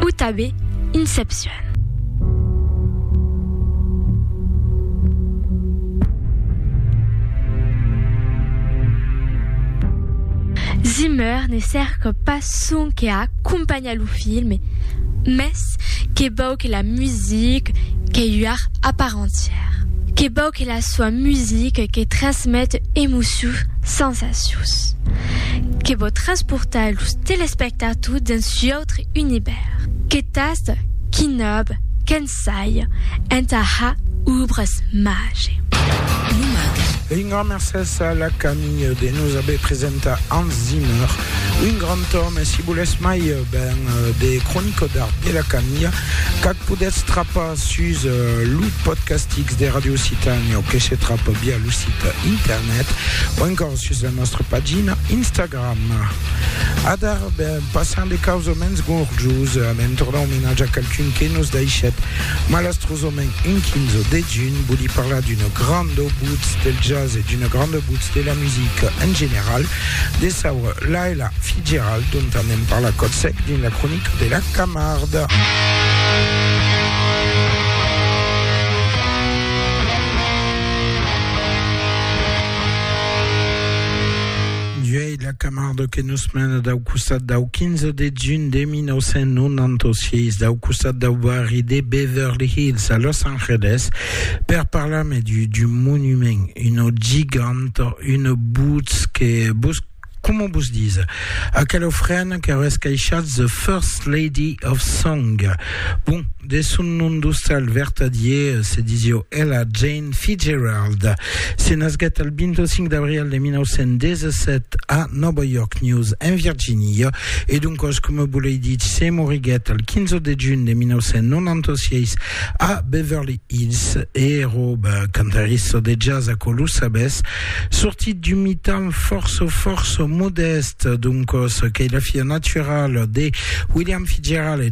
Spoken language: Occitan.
Ou tabé Inception. Zimmer ne cerca pas sonque a acompanhar lo filme, mès que vòu que la musica que ua art a part entièra, que vòu que la soa musica que transmete emocions, sensacions. Audacieus que vò transportar los telespectators dins u'autre univèrs. Que tasta, qui nòb, qu'ensaja, entà ha obras mage. Lo mage. Un grand mercés a la Camille de nos aver presentat Hans Zimmer, un grand òme, si volètz mai ben de cronica d'art de la Camille, qu'ac podètz trapar sus lo podcastix de Radio Occitània o que se trapa via lo site internet. net o encòr sus la nòstra pagina Instagram. Adar, ben, passant de caus o mens gorjos a l'entorn d'un omenatge a qualqu'un que nos daishèt malastrosament un 15 de junh, voli parlar d'una granda butz del jazz e d'una granda butz de la musica en general, de saure Laila Fitzgerald, dont anem parlar còth sec dins la cronica de la Camarda. Uèi la Camardo que nos mena dau costat dau 15 de junh de 1996, dau costat dau barri de Beverly Hills a Los Angeles, per parlar-me d'un monument, una giganta, una bosc que Coma vos dise, aquela ofrena que auesse caishat The First Lady of Song. Bon, de son nom d'ostal vertadier, se disio Ella Jane Fitzgerald. Se nasguèt al 25 d'abril de 1917 a Nòva York News, en Virginia, e doncòs, coma vos l'ai dich, se moriguèt al 15 de junh de 1996 a Beverly Hills. E Rob, cantarissa de jazz, aquò lo sabètz, Sortit d'un mitan fòrça fòrça modèst, doncòs qu'ei la fia naturala de William Fitzgerald e